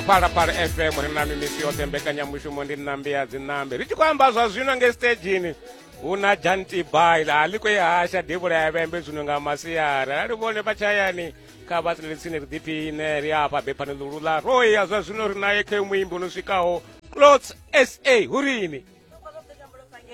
phalaphala fm ri na mimisi yoṱhe mbekanyamushumo ndi nnambi ya dzinambi ri tshi khou amba zwa zwino nge stagini hu na jantibail a liko ihasha devula ya vhembe zwino nga masiari arali vhone vha tshayani kha vha tsini tsini ri ḓiphiine ri afha bephani ḽulu ḽa roya zwa zwino ri naye khe muimbi no swikaho clots sa hurini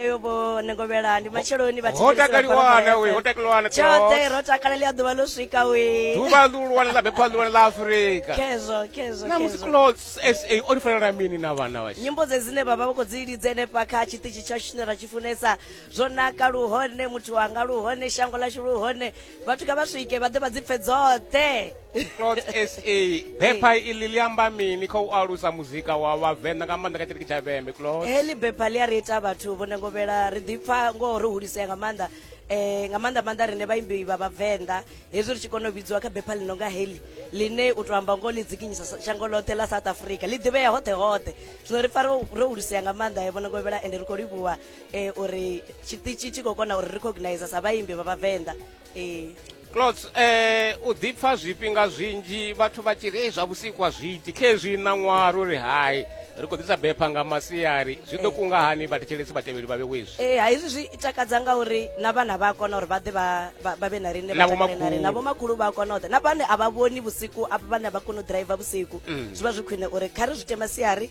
yo vho negovhela ndi matsheloni vha ho takaliwana we ho takaliwana tshoṱhe ro takalela ya ḓuvha ḽo swika we ḓuvha ḽihulwane ḽa bepha ḽihulwane ḽa afurika kezo kezo na musi clothes sa o ri fanela mini na vhana vha nyimbo dze dzine vha vha vha khou dzi lidze henefha kha tshiṱitshi tsha tshine ra tshi funesa zwo naka luhone muthu wanga luhone shango ḽashu luhone vhathu kha vha swike vha ḓe vha dzi pfe dzoṱhe clot sa bepha iḽi ḽi amba mini kha u alusa muzika wa vhavenḓa nga maanḓa kha tshiṱiriki tsha vhembe clot heḽi bepha ḽi a ri ita vhathu vho nengovhela ri ḓipfa ngoho ro hulisea nga maanḓa um nga maanḓa maanḓa rine vhaimbi vha vhavenḓa hezwi ri tshi kona u vhidziwa kha bepha ḽi no nga heḽi ḽine u to amba ngoho ḽi dzikinyisa shango ḽoṱhe ḽa south africa ḽi ḓivhea hoṱhe hoṱhe zwino ri pfa ro hulisea nga maanḓa vho nengovhela ende ri khou livhuwa eh, uri tshiṱitshi tshi khou kona uri recognize sa vhaimbi vha vhavenḓa eh. clots eh, u ḓipfa zwifhinga zwinzhi vhathu vha tshi ri zwa vhusikwa zwiti khezwi ṋaṅwaha ro ri hai ri khou ḓisa bepha nga masiari zwi ḓo eh. kunga hani vhathetshelesi vhatevheli vha vhewezwi e eh, ha izwi zwi takadza nga uri na vhana vha a kona uri vha ḓe vha vhe na rine na vhomakhulu vha a kona u ḓa na vhane a vha vhoni vhusiku a vhane a vha koni u driver vhusiku mm. zwi vha zwi khwine uri kha ri zwi tema siari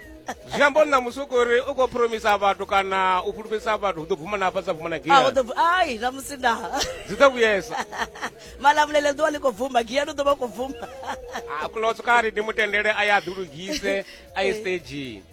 zwi amba uri na musi u khou ri u khou promisa vhathu kana u fhulufhedzisa vhathu u ḓo bvuma na hafha sa bvuma na gia ai na musi na zwi ḓo vhuyesa malamulele ḓuvha ḽi khou bvuma gia no ḓo vha khou bvuma a kuloso kha ri ndi mutendele a ye a ḓilugise a ye stagini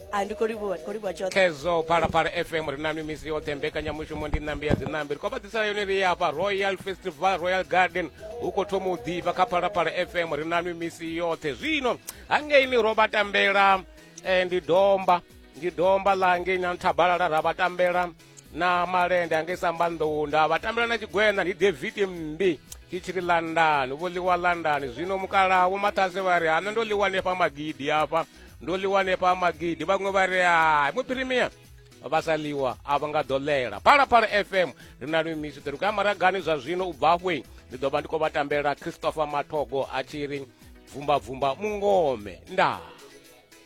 kezo phalaphala fm ri nanu misi yoṱhe mbekanyamushumo ndi ṋambi ya dziṋambi ri khou vha ḓisela yone ri afha royal festival royal garden hu khou thoma u ḓifha kha phalaphala fm ri nanu misi yoṱhe zwino hangei ni ro vha tambela eh, ndi domba ndi domba ḽa ngei na nthabalala ra vha tambela na malende angei sambanḓou nda vha tambela na tshigwena ndi david mmbi ndi tshi ri landani vho ḽiwa landani zwino mukalaha vho mathase vha ri hana ndo ḽiwa nefha magidi afha ndo ḽiwa nefha magidi vhaṅwe vha ri hai muphirimia vha sa ḽiwa a vha nga ḓo ḽela phalaphala fm ri na lwi misu ṱeruka ya maragani zwa zwino u bva hwe ndi ḓo vha ndi khou vha tambela christopher mathogo a tshi ri bvumbabvumba mungome ndaa